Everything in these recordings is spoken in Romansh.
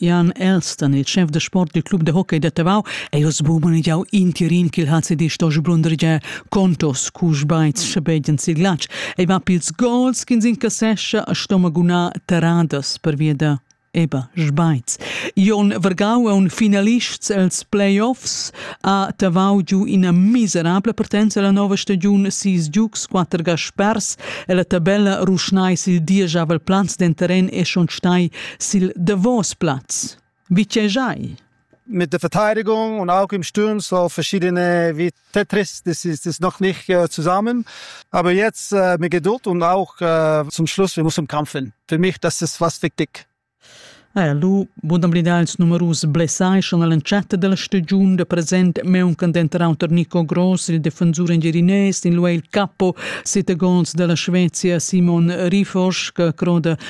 Jan Elston, il chef da sport dil club de hockey da Tavau, ei oz bumanegiau intirin ch'il HCD sto sblundregiar contos cu sbaits schabegian sil glatsch. Ei va pils gols ch'ins incassescha a stomaguna terradas pervia da Eba Sbaits. Jon Vergau è un finalists els playoffs a Tavau giu ina miserabla partenza la nova stagiun sis giugs, quatter gaspers e la tabella ruschnai sil diesavel plaz den terren e schon stai sil davos plaz. Wie tschejai? Mit der Verteidigung und auch im Sturm so verschiedene wie Tetris, das ist, das ist noch nicht äh, zusammen. Aber jetzt äh, mit Geduld und auch äh, zum Schluss, wir müssen kämpfen. Für mich, das ist was wichtig. Eh, lu Budamblidà ils numerus blessai schon all'entschatta della stagione da presente mancant entrar unter Nico Gross, il difensor engirinés, in lui il capo sette gols della Svezia Simon Rifosch, che croda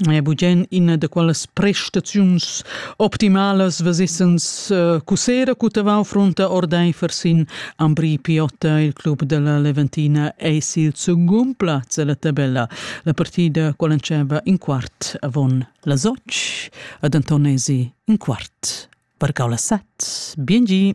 È bugen ina da quellas prestaziuns optimalas vesessens uh, cussera cu tavau frunta ordeifer sin Ambri Piotta. Il club della Leventina ei sil secund plaz ella tabella. La partida quell'enceva in quart avon las otg ad Antonesi in quart vargau las sat. Bien gi!